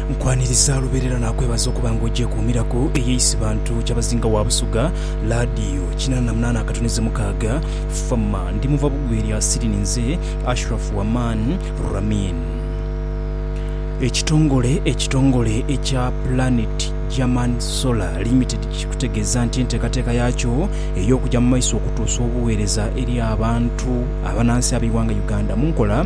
Nkwaniriza lubeerera naakwebaza okuba nga ogyekuumiraku eyo Isibantu Kyabazinga wa Busoga Laadiyo kinana na munaana akatuniza mukaaga FAMA Ndi muva Bugwe lya Siri Ninze Ashraf Waman Ramin Ekitongole ekitongole ekya Planet German Solar Limited kikutegeeza nti enteekateeka yaakyo ey'okugya mu maiso okutuusa obuweereza eri abantu abanansi ab'eighanga Uganda mu nkola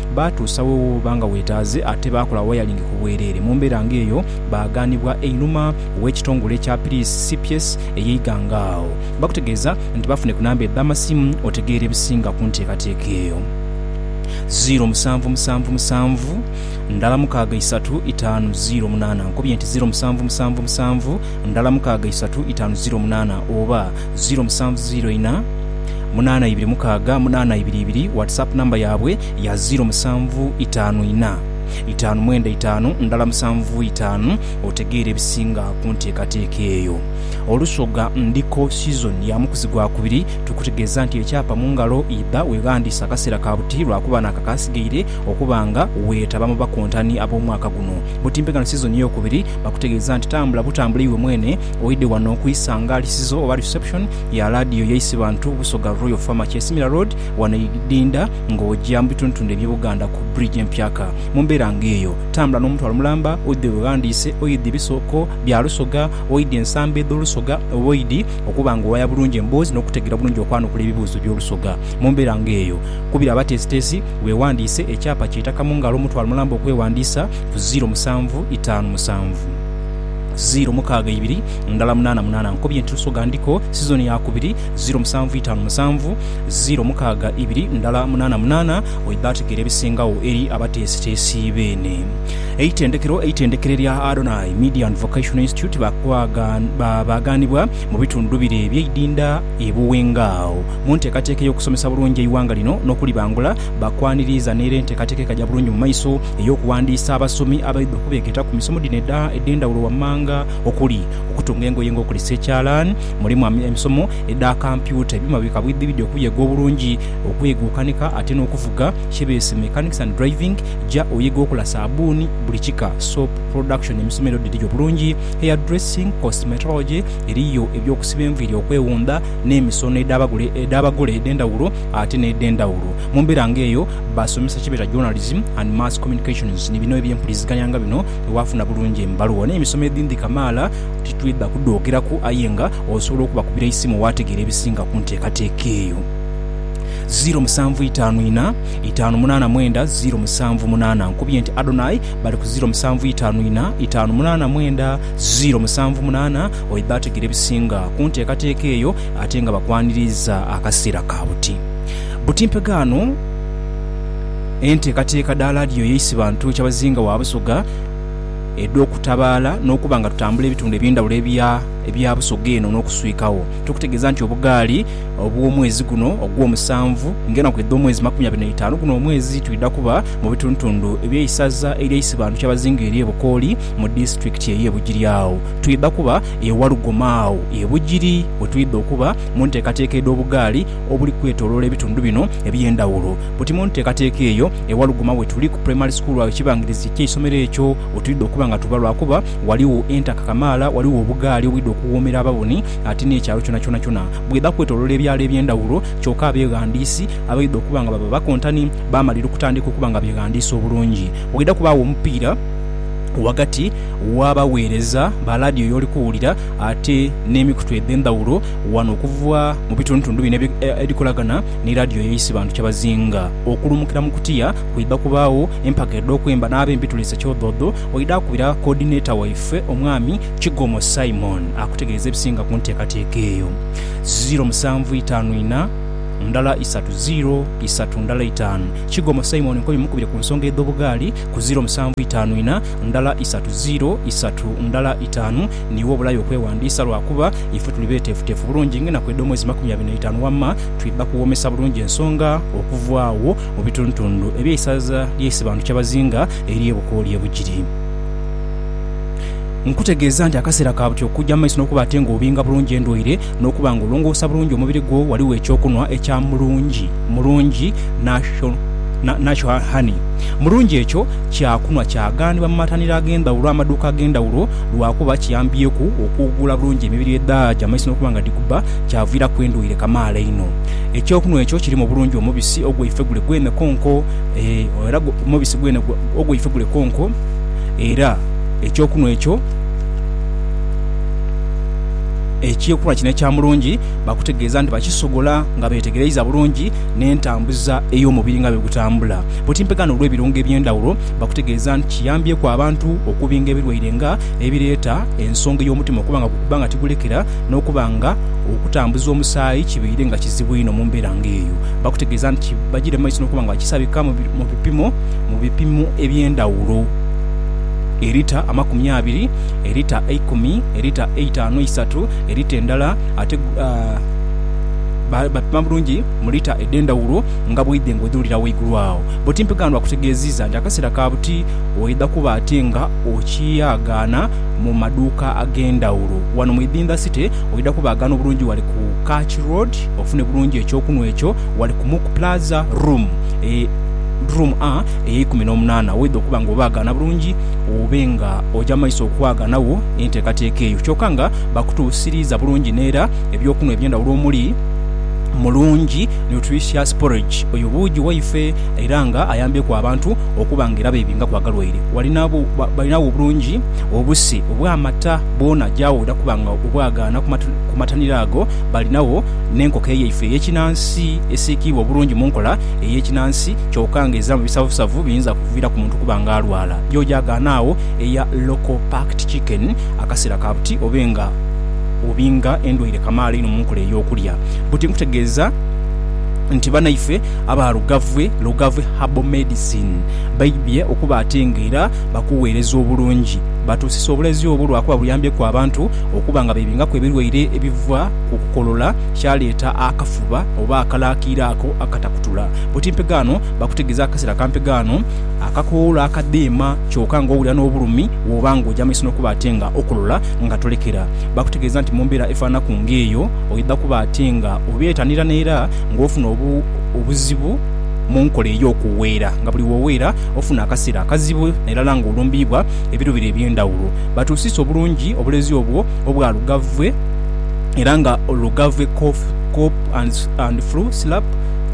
Baatuusa we wooba nga weetaaze ate baakola wayalingi ku bwereere. Mu mbeera ng'eyo, baaghanibwa einhuma w'ekitongole kya Piriisi CPS ey'eighanga agho. Bakutegeeza nti bafune ku namba edh'amasimu otegeere ebisinga ku nteekateeka eyo. Ziiro musanvu musanvu musanvu ndala mukaaga isatu itaanu ziiro munaana, Nkubye nti ziiro musanvu musanvu musanvu ndala mukaaga isatu itaanu ziiro munaana oba. ziro musanvu ziro ina munaana ibiri mukaaga munaana ibiri ibiri WhatsApp number yaabwe ya ziro musanvu itaanu ina itaanu mwenda itaanu ndala musanvu itaanu otegeere ebisinga ku nteekateeka eyo. Olusoga ndiko season ya mukuzi gwa kubiri tukutegeeza nti ekyapa mu ngalo idha weghandiise akaseera ka buti lwakuba naako akaasigaire okuba nga weetaba mu bakontani ab'omwaka guno. Butimpegano season ey'okubiri bakutegeeza nti tambula butambule iwe mwene Oidhe wano ku isanga lisizo oba reception ya laadiyo yaisi bantu Busoga Royal Farmer Kyesimira Road wano e Idinda nga oja mu bitundutundu eby'e Buganda ku bridge empyaka. Mu mbeera nga eyo, tambula n'omutwalo mulamba oidhe weghandiise oidhi ebisooko bya Lusoga, oidhi ensamba edh'Olusoga oba oidhi okuba nga owaya bulungi emboozi n'okutegeera bulungi okwanukula ebibuuzo by'Olusoga. Mu mbeera nga eyo, kubira abateesiteesi weghandiise ekyapa ky'eitaka mu ngalo omutwalo mulamba okweghandiisa ku ziiro musanvu itaanu musanvu. ziro mukaaga ibiri ndala munaana munaana nkobye nti Lusoga ndiko sizoni ya kubiri ziro musanvu itaanu musanvu ziro mukaaga ibiri ndala munaana munaana oidha ategeera ebisingagho eri abateesiteesi beene eitendekero Eitendekero erya Adonai Media and Vocational Institute baagaanibwa mu bitundu bire ebyeidinda e Buwenga agho mu nteekateeka ey'okusomesa bulungi eighanga lino n'okulibangula Bakwaniriiza n'era enteekateeka ekaja bulungi mu maiso ey'okuwandiisa abasomi abaidha okubeegeeta ku misomo dhino edh'endhawulo wammanga okuli, okutunga engoye nga okozesa ekyalaani, mulimu emisomo edha kampyuta, ebyuma bi kabwidhibwidhi, okuyega obulungi okuyega okukanika ate n'okuvuga kye beese mechanics and driving, ja oyege okola saabbuuni buli kika, soap production, emisomo edho dhiriyo bulungi, hair dressing, cosmetology, eriyo eby'okusiba enviiri, okwewunda, n'emisono edh'abagole edh'endhawulo ate n'edh'endhawulo. Mu mbeera nga eyo. baasomesa kye beeta Journalism and Mass Communications ni bino eby'empuliziganya nga bino bwe waafuna bulungi embaluwa. N'emisomo edhindhi kamaala titwidha kudhoogeraku aye nga osobola okubakubira eisimu waategeera ebisinga ku nteekateeka eyo. Ziiro musanvu itaanu ina, itaanu munaana mwenda ziiro musanvu munaana. Nkubye nti Adonai bali ku ziiro musanvu itaanu ina, itaanu munaana mwenda ziiro musanvu munaana oyo baategeera ebisinga ku nteekateeka eyo ate nga bakwaniriiza akaseera ka buti. Buti mpegaano enteekateeka dha laadiyo y'eisi bantu ekyabazinga wa Busoga edh'okutabaala n'okuba nga tutambula ebitundu eby'endhawulo ebya Busoga eno n'okuswikagho. Tukutegeeza nti obugaali obw'omwezi guno ogw'omusanvu ng'enaku edh'omwezi makumi abiri n'eitaanu guno omwezi twidha kuba mu bitundutundu eby'eisaza ery'eisi bantu kyabazinga ery'e Bukooli mu disitulikiti ey'e Bugiri. Agho twidha kuba e Walugoma agho e Bugiri we twidha okuba mu nteekateeka edh'obugaali obuli kwetoloola ebitundu bino eby'endhawulo. Buti mu nteekateeka eyo, e Walugoma we tuli ku Primary School agho ekibangirizi ky'eisomero ekyo we twidha okuba nga tuba lwakuba ghaligho entaka kamaala, ghaligho obugaali obwidha okuwoomera ababoni ate n'ekyalo kyona kyonakyona bwidha kwetoloola ebyalo eby'endhawulo. Kyoka abeghandiisi abaidha okuba nga baba bakontani baamalira okutandika okuba nga beghandiisa obulungi. Waidha kubaagho omupiira ghagati w'abaweereza ba laadiyo y'oli kuwulira ate n'emikutu edh'endhawulo. Wano okuva mu bitundutundu bino ebikolagana ni laadiyo y'eisi bantu kyabazinga okulumukira mu kutya. Kwidha kubaagho empaga edh'okwemba n'ab'empitule ze kyodhoodho. Waidha akubira Coordinator waife Omwami Kigomo Simon akutegeeze ebisinga ku nteekateeka eyo. Ziro musanvu itaanu ina, ndala isatu ziro isatu ndala itaanu. Kigomo Simon nkobi mukubire ku nsonga edh'obugaali ku ziro musanvu itaanu ina, ndala isatu ziro isatu ndala itaanu. Ni wo obulayo okwewandiisa lwa kuba ife tuli beteefuteefu bulungi ng'enaku edh'omwezi makumi abiri n'eitaanu wamma twidha kuwoomesa bulungi ensonga okuva agho mu bitundutundu eby'eisaza lya Isibantu Kyabazinga ery'e Bukooli e Bugiri. Nkutegeeza nti akaseera ka buti okugya mu maiso n'okuba ate ng'obinga bulungi endwaire n'okuba nga olongoosa bulungi omubiri gwo, ghaligho eky'okunwa ekya Mulungi Mulungi Natural Honey Mulungi. Ekyo kyakunwa kyaghanibwa mu mataniro ag'endhawulo, amaduuka ag'endhawulo lwakuba kiyambyieku okuwugula bulungi emibiri edhaaja mu maiso n'okuba nga dhikubba kyaviiraku endhwaire kamaala inho. Eky'okunwa ekyo kirimu bulungi omubisi ogweifegule gwene konko era omubisi gwene ogweifegule konko era eky'okunwa ekyo. Ekyekulwa kino ekya Mulungi bakutegeeza nti bakisogola nga beetegereiza bulungi n'entambuza ey'omubiri nga bwegutambula. Bwoti mpegano olw'ebirungo eby'endhawulo bakutegeeza nti kiyambyeku abantu okubinga ebirwaire nga ebireeta ensonga ey'omutima okuba nga gukuba nga tigulekera n'okuba nga okutambuza omusaayi kibaire nga kizibu inho mu mbeera nga eyo bakutegeeza nti bagiire mu maiso n'okuba nga bakisabika mu bipimo eby'endhawulo e lita amakumi abiri elita eikumi, elita eitaanu eisatu, elita endala ate ba, bapima bulungi mu lita edh'endhawulo nga bw'oidha engodhuulira ghaigulu agho. Bbuti Mpiganwa akutegeeziiza nti akaseera ka buti oidha kuba ate nga okyaghana mu maduuka ag'endhawulo. Wano mu Idhindha City oidha kubaghana obulungi wali ku Catch Road ofune bulungi eky'okunhwa ekyo wali ku Muku Plaza Room e, Room A, ey'eikumi n'omunaana, woidha okuba nga obaghana bulungi. obe nga oja maiso okwaagana wo enteekateeka eyo kyoka nga bakutuusiriiza bulungi n'era eby'okunhwa eby'endhawulo omuli Mulungi Nutritious Porridge. Oyo buugi waife era nga ayambyeku abantu okuba nga era beebingaku agalwaire. Balinagho bulungi obuse obw'amata bwona jawo oja kuba nga obwagaana ku mataniro ago. Balinagho n'enkoko eyaife ey'ekinansi esiikiibwa obulungi mu nkola ey'ekinansi kyoka nga eziramu bisavusavu biyinza. okuviira ku muntu okuba nga alwala. George agaana agho eya Local Packed Chicken akaseera ka buti obe nga obinga endwaire kamaala inho mu nkola ey'okulya. Buti nkutegeeza nti banaife aba Lugavue, Lugavue Herbal Medicine, baidhie okuba ate nga era bakuweereza obulungi. Batuusisa obulezi obwo lwa kuba buyambyeku abantu okuba nga beebingaku ebilwaire ebiva ku kukolola kyaleeta akafuba oba akalaakiira ako akatakutula. Buti mpegaano Bakutegeeza akaseera kampi ghano akakoola akadheema kyoka nga owulira n'obulumi bw'oba nga oja maiso n'okuba ate nga okulola nga tolekera. Bakutegeeza nti mu mbeera efaananaku ng'eyo oidha kuba ate nga obyetanira n'era nga ofuna obuzibu mu nkola ey'okuweera nga buli w'oweera ofuna akaseera akazibu nairala nga olumbiibwa ebiruubiro eby'endhawulo. Batuusiisa obulungi obulezi obwo obwa lugavve era nga lugavve cough, cope and flu syrup.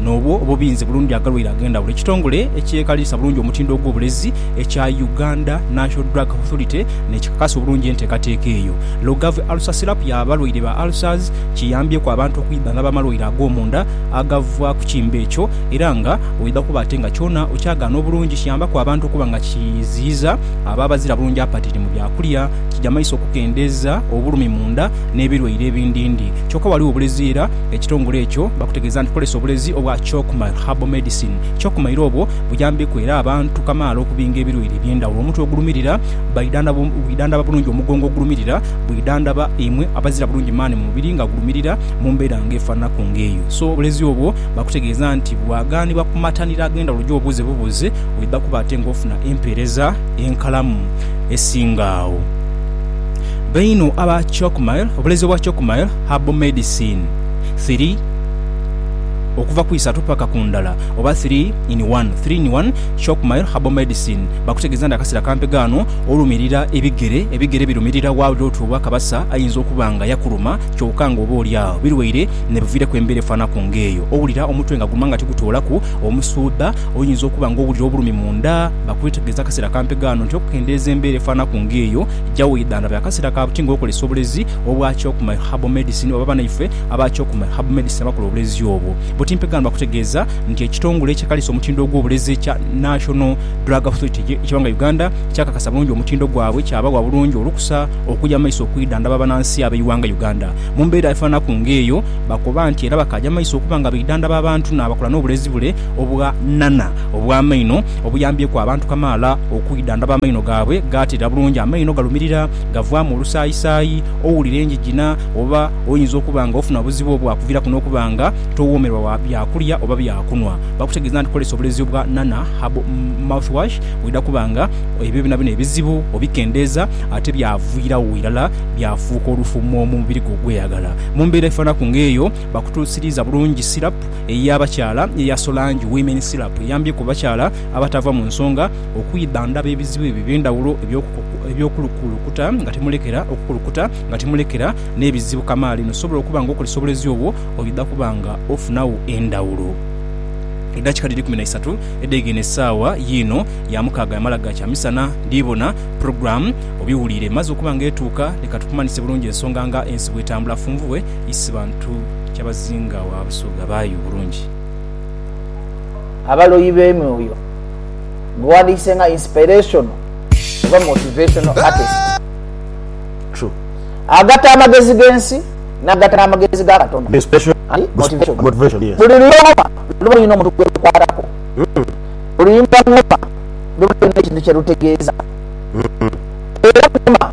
n'obwo obubinze bulungi agalwaire ag'endhawulo. Ekitongole ekyekaliriza bulungi omutindo ogw'obulezi ekya Uganda National Drug Authority n'ekikakasa obulungi enteekateeka eyo. Logav Ulcer Syrup ya balwaire ba ulcers kiyambyeku abantu okwidhangaba amalwaire ag'omunda agava ku kimbe ekyo era nga oidha kuba ate nga kyona okyagaana obulungi. Kiyambaku abantu okuba nga kiziyiza abo abazira bulungi apatiti mu byakulya, kija maiso okukendeeza obulumi munda n'ebirwaire ebindindi. Kyoka ghaligho obulezi era ekitongole ekyo bakutegeeza nti kozesa obulezi obwa Chalkmile Herbal Medicine. Chalkmile obwo buyambeku era abantu kamaala okubinga ebilwaire ebyendhawulo. Omutwe ogulumirira bwidhandhaba bulungi omugongo ogulumirira bwidhandhaba imwe abazira bulungi maani mu mubiri nga gulumirira mu mbeera nga efananaku nga eyo so obulezi obwo bakutegeeza nti bwaghanibwa ku mataniro agendhawulo gyobuuze bubuuze oidha kuba ate nga ofuna empeereza enkalamu esinga agho. Bainu aba Cocmile Obulezi obwa Cocmile Herbal Medicine 3 okuva ku isatu paka ku ndala oba 3 in 1 Three in One Cocmile Herbal Medicine Bakutegeeza nti akasera kampi gaano olumirira ebigere ebigere birumirira wa lira oti owa kabasa ayinza okuba nga yakuluma kyoka nga oba olyagho birwaire nebiviiraku embeera efaanaku nga eyo owulira omutwe nga guluma nga tigutoolaku omusuudha oyinza okuba nga owulira obulumi munda Bakutegeeza akasera kampi gaano nti okukendeeza embeera efaanaku nga eyo Jawidhan abe akasera ka buti nga okolesa obulezi obwa Kyokumai Herbal Medicine oba banaife aba Kyokumai Herbal Medicine abakola obulezi obwo. Butimpegaano bakutegeeza nti ekitongole ekikaliisa omutindo gw'obulezi ekya National Drug Authority eky'eghanga Uganda kyakakasa bulungi omutindo gwabwe kyabawa bulungi olukusa okuja mu maiso okwidhandhaba banansi ab'eighanga Uganda mu mbeera efananaku ng'eyo. Bakoba nti era bakaaja mu maiso okuba nga baidhandhaba abantu n'abakola n'obulezi bule obwa Nana. Obw'amaino obuyambyeku abantu kamaala okwidha ndaba amaino gaabwe gaateera bulungi. Amaino galumirira, gavaamu olusaayisaayi, owulira enjijina, oba oyinza okuba nga ofuna obuzibu obwakuviraku n'okuba nga towoomerwa wa byakulya oba byakunwa. Bakutegeeza nti kozesa obulezi obwa Nana Herbal Mouthwash oidha kuba nga ebyo byonabyona ebizibu obikendeeza ate byaviirawo irala byafuuka olufumo mu mubiri gwo ogweyagala. Mu mbeera efaanaku ng'eyo, bakutuusiriiza bulungi sirapu ey'abakyala eya Solange Women Syrup eyambyeku abakyala abatava mu nsonga okwidhandhaba ebizibu ebyo eby'endhawulo eby'okulukulukuta nga timulekera, okukulukuta nga timulekera n'ebizibu kamaala eno sobola okuba nga okozesa obulezi obwo oidha kuba nga ofunagho endhawulo. Edakika dhiri kumi na isatu edhegeine esaawa yiino ya mukaaga yamala ga kyamisana ndiibona program obiwuliire emaze okuba nga etuuka. Leka tukumanhise bulungi ensonga nga ensi bw'etambula funvubwe isi bantu. kyabazinga wa Busoga baayo bulungi. Abaloyi b'emyoyo, Gughandiikise nga inspirational oba motivational artist. True. Agatta amagezi g'ensi n'agatta n'amagezi ga Katonda. Inspirational and motivational, yes. Buli luyoma luba lulina omuntu gwe lukwatako. Buli luyimba ng'oma luba lulina ekintu kye lutegeeza. Era ng'oma.